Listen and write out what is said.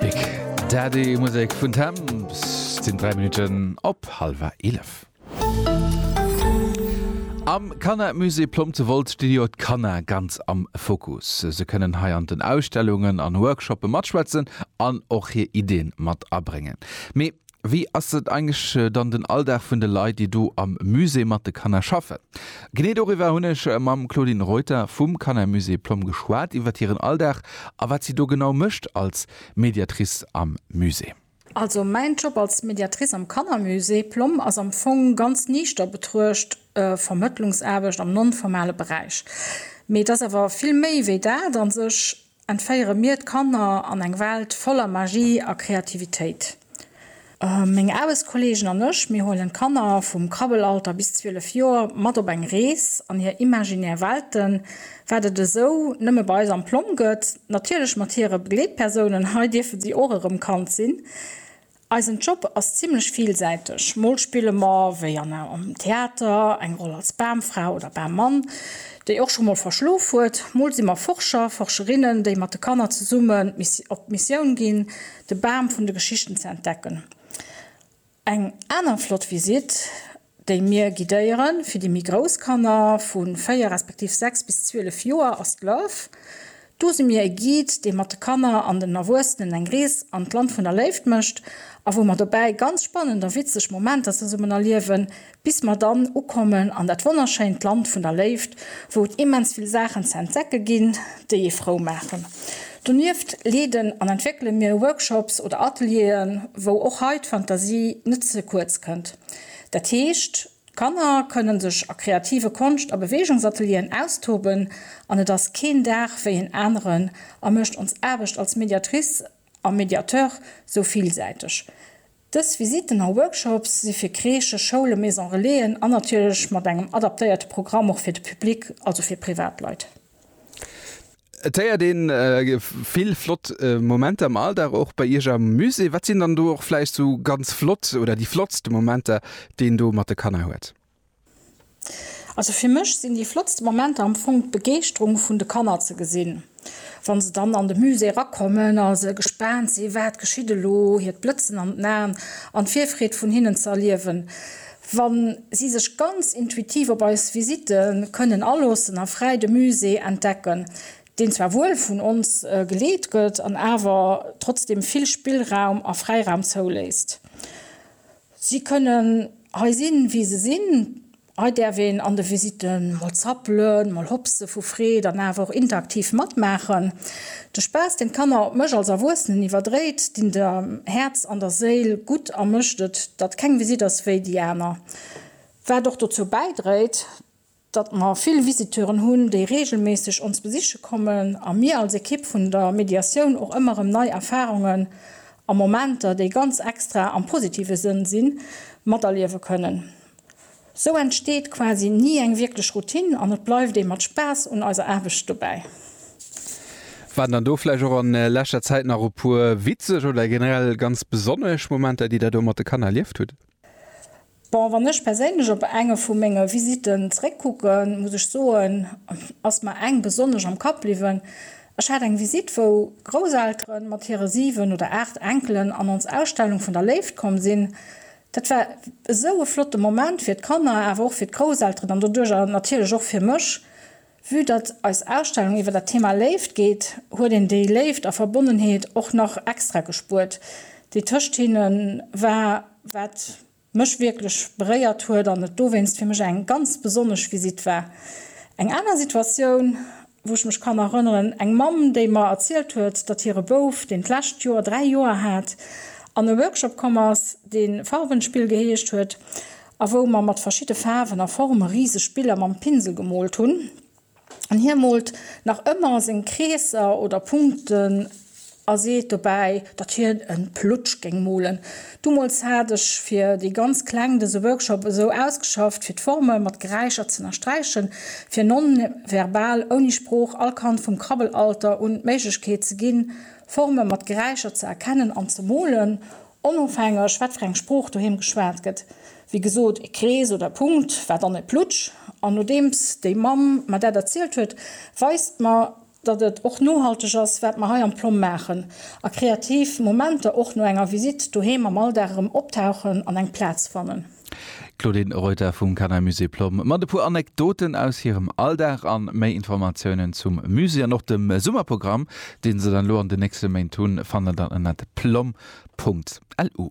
Big Daddy Musek vun Temps sinn 3 Minutten op Halwer 11. Am Kanna Musée Plomb zu Wolz sti jo d'Kanna ganz am Fokus. Se kënnen hei an den Ausstellungen an Workshoppe matschwätzen an och hir Iddien mat abréngen. Mee Wéi ass eigentlech dann den Alldag vun de Leit, déi do am Musée mat de Kanner schaffen? Genee doriwwer hunn ech mam Claudine Reuter vum Kannermusée Plomm geschwat, iwwer hiren Alldag a wat si do genau mécht als Mediatrice am Musée. Also mäin Job als Mediatrice am Kannermusée Plomm ass am Fong ganz niichter betruecht Vermëttlungsaarbecht am non-formale Beräich. Mee et ass awer vill méi wéi dat a sech. Entféiere mir d'Kanner an eng Welt voller Magie a Kreativitéit? Meng Aarbechtskolleegen an ech, mir huelen d'Kanner vum Krabbelalter bis 12 Joer mat op eng Rees an hir imaginär Welten, wat et esou nëmme bei eis am Plomm gëtt, natierlech mat hire Begleetpersounen, hei dierfe si och erëm Kand sinn. Eisen Job ass zimlech villsäiteg, mol spille mer, wéi an am Theater, eng Roll als Bamfra oder Bammann, déi och scho mol verschlof huet, mol si mer Forscher, Forscherinnen, déi mat de Kanner zesummen op d'Missioun ginn, de Bam vun de Geschichten ze entdecken. Eng aner flott Visitt déi mir guidéieren. Fir déi méi grouss Kanner, vu 4 respektiv 6 bis 12 Joer, ass d'Love. Do si mir e Guide, dee mat de Kanner an den Erwuessenen eng Rees an d'Land vun der Léift mécht a wou mer dobäi ganz spannend a witzeg Momenter zesummen erliewen, bis mer dann ukommen an dat wonnerschéint Land vun der Léift, wou et immens vill Saachen ze entdecke ginn, déi ee frou maachen. Donieft leeden an entwéckele mir Workshops oder Atelieren, wou och hei d'Fantasie net ze kuerz kënnt. Dat heescht, d'Kanner kënne sech a kreative Konscht a Beweegungsatelieren austoben an et ass keen Dag wéi en aneren a mécht ons Aarbecht als Mediatrice a Mediateur sou villsäiteg. Dës Visitten a Workshops si fir Crèchen, Schoulen, Maison-relaisen an natierlech mat engem adaptéierte Programm och fir de Public, also fir Privatleit. Et héiert een vill flott Momenter am Alldag och bei Iech am Musée. Wat sinn dann do och vläicht sou ganz flott oder déi flottste Momenter, déi een do mat de Kanner huet? Also fir mech sinn déi flottste Momenter am Fong d'Begeeschterung vun de Kanner ze gesinn, wa se dann an de Musée erakommen a se gespaant si wat geschitt elo, hiert Blëtzen an den Aen an d'Virfreed vun hinnen ze erliewen. Wa si sech ganz intuitiv op eis Visite kënnen aloossen a fräi de Musée entdecken, deen zwar wuel vun ons geleet gëtt an awer trotzdeem vill Spillraum a Fräiraum zouléisst. Si kënnen hei sinn, wéi se sinn. Hei däerf een an de Visite mol zappelen, mol hopse vu Freed an awer och interaktiv matmaachen. De Spaass, deen d'Kanner op mech als Erwuessenen iwwerdréit, dinn dem Häerz an der Séil gutt a mécht et, datt keng Visitt ass wéi déi aner. Wat och dozou bäidréit, datt mer vill Visiteuren hunn, déi reegelméisseg ons besiche kommen a mir als Ekipp vun der Mediatioun och ëmmer erëm nei Erfarungen a Momenter, déi ganz extra am positive Sënn sinn, materliewe kënnen. Sou entsteet quasi ni eng wierklech Routine an et bleift ee mat Spaass un eiser Aarbecht dobäi. Waren dann do vläicht och an leschter Zäit nach e puer witzeg oder generell ganz besonnesch Momenter, déi der do mat de Kanner erlieft hutt? Bon, wann ech perséinlech op enge vu menge Visitten zeréckkucken, muss ech soen, ass mer eng besonnesch am Kapp bliwwen. Ech hat eng Visite, wou Grousseltere mat hire 7 oder 8 Enkelen an ons Ausstellung vun der Léift komm sinn. Dat war esou e flotte Moment fir d'Kanner, awer och fir d'Grousselteren an doduerjer natierlech och fir mech. Vue datt eis Ausstellung iwwer dat Thema Léift geet, huet een déi Léift a Verbonnenheet och nach extra gespuert, déi tëscht hinne war, wat mech wierklech beréiert huet an et dowéinst fir mech eng ganz besonnesch Visitt war. Eng aner Situatioun. wou ech mech kann erënneren, eng Mamm, déi mer erzielt huet, datt hire Bouf, deen d'lescht Joer dräi Joer hat, an e Workshop komm ass, dee Farbenspiel geheescht huet a wou mer mat verschidde Faarwen a Forme riseg Biller mam Pinsel gemoolt hunn. An hie moolt nach ëmmer seng Kreesser oder Punkten A seet dobäi, datt hien e Plutsch géing molen. Dumools hat ech fir déi ganz Kleng dëse Workshop esou ausgeschafft, fir d'Forme mat Geräischer z'ënnersträichen, fir non-verbal, ouni Sprooch, all Kand vum Krabbelalter un d'Méiglechkeet ze ginn, Forme mat Geräischer ze erkennen an ze molen, onofhängeg, wat fir eng Sprooch doheem geschwat gëtt. Wéi gesot, e Krees oder e Punkt war dann e Plutsch. An nodeems déi Mamm mer dat erzielt huet, weist mer datt et och nohalteg ass, wat mer hei am Plomm maachen, a kreativ Momenter och no enger Visitt doheem am Alldag erëm optauchen an eng Plaz fannen. D'Claudine Reuter vum Kannermusée Plomm mat e puer Anekdoten aus hirem Alldag a méi Informatiounen zum Musée an och dem Summerprogramm, dee se dann elo an den nächste Méint hunn, fannt der dann ënnert plomm.lu.